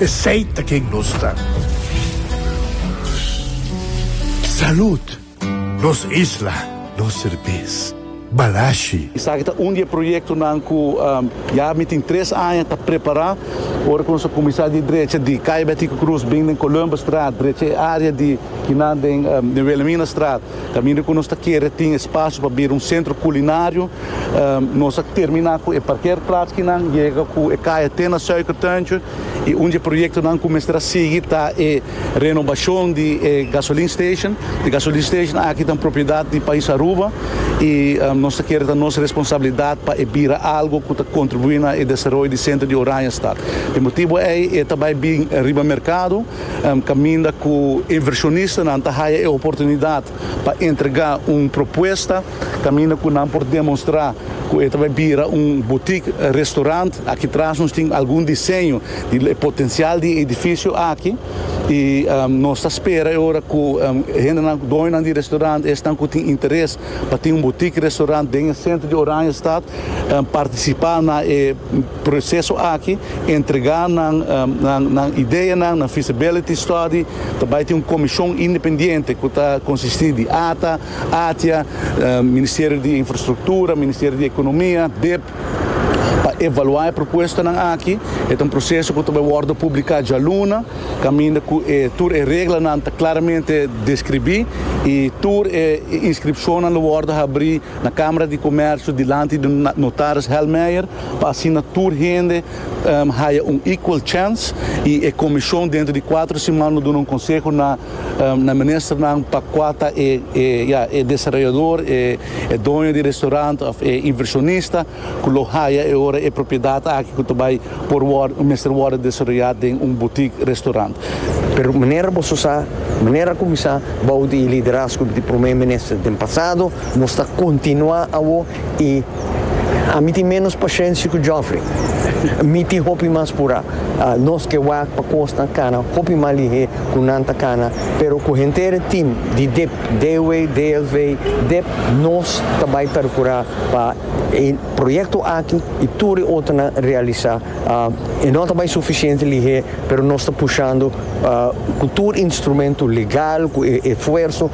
Esey ta ken nos ta. Salud! Nos isla, nos serbes. Balashi. Esaki ta un di e proyektonan ku ya mi tin tres aña ta prepará. Ora ku nos a kuminsá di drecha di Kaya Betico Cruz, bin den Columbusstraat, drecha e área di kinan den Wilhelminastraat. Kaminda ku nos ta kere tin e spasio pa bira un sentro kulinario, nos a terminá ku e parkerplatsnan, yega ku e kaya te na Suikertuintje. I un di e proyektonan ku mester a sigui ta e renobashon di e gasolin station. E gasolin station aki ta un propiedat di pais Aruba i nos ta kere ta nos responsabilidat pa e bira algu ku ta kontribuí na e desaroyo di sentro di Oranjestad. Dje motibu ei e ta bai bin riba merkado. Caminda cu inversionistanan ta haya e oportunidad pa entrega un propuesta, caminda cu nan por demonstra cu e ta bay bira un boutique restaurant. Aki tras nos tin algun diseño di e potencial di e edificio aki y nos ta spera e ora cu hendenan, doñonan di restaurant esnan cu tin interes pa tin un boutique restaurant den e centro di Oranjestad, participa na e. Proseso aki entregá nan nan ideanan na feasibility study ta bai tin un komishon independiente ku ta konsistí di ata, ATIA, Ministerio di Infrastruktura, Ministerio di Ekonomia, dip, pa evaluá e propuestanan aki. E ta un proseso ku ta bai wòrdu publiká djaluna kaminda ku e tur e reglanan ta klaramente deskribí i tur e inskripshonnan lo wòrdu habrí na Kamara di Komersio dilanti di notaris Helmeijer. pa asina tur hende haya un equal chance y e comision dentro di cuatro siman lo duna un conseho na na ministernan pa cua ta e e ya e desarrollador e e doño di restaurant of e inversionista cu lo haya e ora e propiedad aki cu ta bay por worde mester worde desarrolla den un boutique restaurant. Pero manera boso sa, manera a cuminsa bou di e liderazgo di prome minister den pasado, nos ta continua awo. y ami tin menos pashensia cu Geoffrey. Mi tin hopi mas pura. Nos ke wak pa cosnan cana hopi mas lihe cu nan ta cana, pero cu henter tin di dip, DW, DLV, dip, nos ta bay percura pa e proyecto aki y tur e otronan realisa. E no ta bay suficiente lihe, pero nos ta pushando cu tur instrumento legal, cu e esfuerso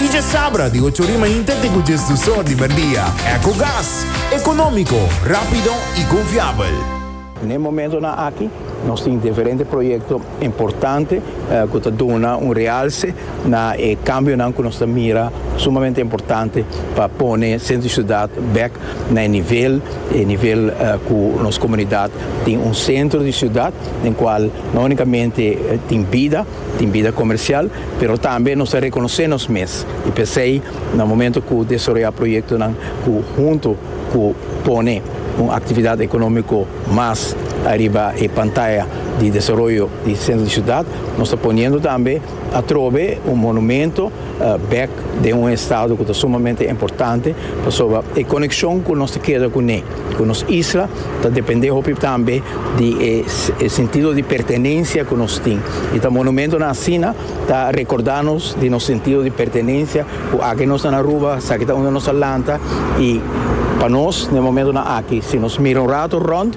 Y dje sabra di ocho rima inte te cu dje sdusor di merdia. Ecogas. Economico, rapido y confiabel. N'e momentonan aki nos tin diferente proyecto importante cu ta duna un realce na e cambionan cu nos ta mira sumamente importante pa pone centro di ciudad bek na e nivel, e nivel cu nos comunidad tin un centro di ciudad den cual no unicamente tin bida, Tin bida comercial, pero tambe nos ta reconoce nos mes y p'esey na momento cu desarroya proyectonan cu hunto cu pone un actividad economico mas ariba e pantaya di desaroyo di centro di ciudad, nos ta poniendo tambe atrobe un monumento. bek den un estado cu ta sumamente importante pasobra e conexion cu nos ta keda cu ne, cu nos isla ta depende hopi tambe di e sentido di pertenencia cu nos tin y ta monumentonan asina ta recorda nos di nos sentido di pertenencia cu aki nos ta na Aruba saki ta unda nos ta lanta y pa nos na e momentonan aki si nos mira un rato rond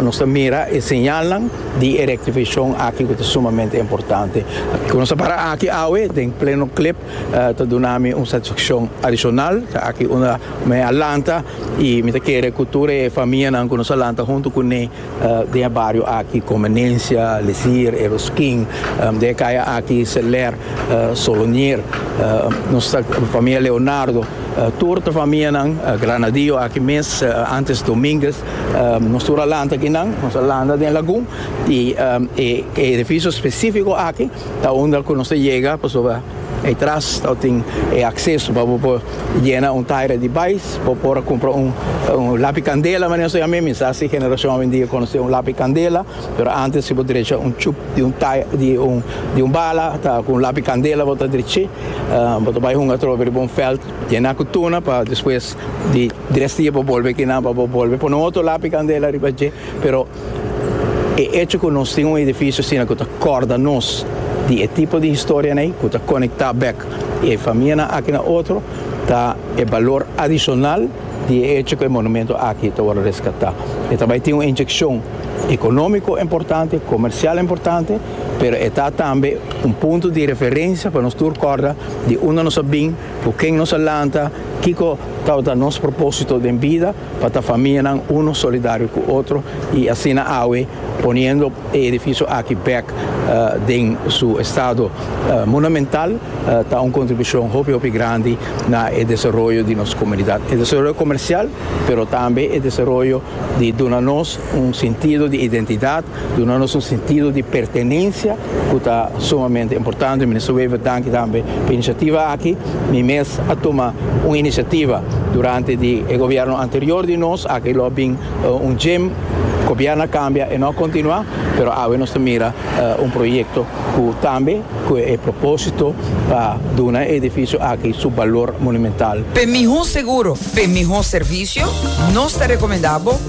nos ta mira e señalnan. di e rectificacion aki cu ta sumamente importante. Cu nos a para aki awe den pleno clip ta duna mi un satisfaccion adicional, ta aki unda mi a lanta y mi ta kere cu tur e famianan cu nos a lanta hunto cu ne den e bario aki, Convenencia, Lesier, e Ruskin, den e caya aki, Seler, Solonier, nos ta famia Leonardo, tur ta famianan, Granadillo aki mes, antes Dominguez. Nos tur a lanta kinan, nos a lanta den lagun y e edificio specifico aki ta unda cu nos ta yega pasobra ey tras ta tin e acceso pa bo por yena un taira di bais, bo por a cumpra un lapi candela mane nos ta yama, mi sa si generacion awendia conoce un lapi candela, pero antes si bo drecha un chup di un taira di un bala ta cu un lapi candela bo ta dreche, bo ta bay hunga atrobe riba un veld yena cu tuna pa despues di. Di res dia bo bolbe kina pa bo bolbe pone un otro lapi candela riba dje, pero e hecho cu nos tin un edificio asina cu ta corda nos di e tipo di historianan ey, cu ta conecta bek e famianan aki na otro, ta e balor adicional di e hecho cu e monumento aki ta worde rescata. E ta bay tin un inyeccion economico importante, comercial importante, pero e ta tambe un punto di referencia pa nos tur corda di unda nos a bin, Ku ken nos a lanta? Kiko tabata nos propósito den bida pa ta famianan uno solidario ku otro i asina awe poniendo e edifisio aki bèk den su estado monumental ta un kontribushon hopi hopi grandi na e desaroyo di nos komunidat, e desaroyo komersial pero tambe e desaroyo di duna nos un sintido di identidat. Duna nos un sentido di pertenencia cu ta sumamente importante. Minister Wever, danki tambe pa e iniciativa aki. Mi mes a tuma un iniciativa durante di e gobierno anterior di nos, aki lo a bin un gym, gobierno a cambia e no a continua, pero awe nos ta mira un proyecto cu tambe cu e proposito pa duna e edificio aki su balor monumental. P'e miho seguro, p'e miho servicio, nos ta recomenda bo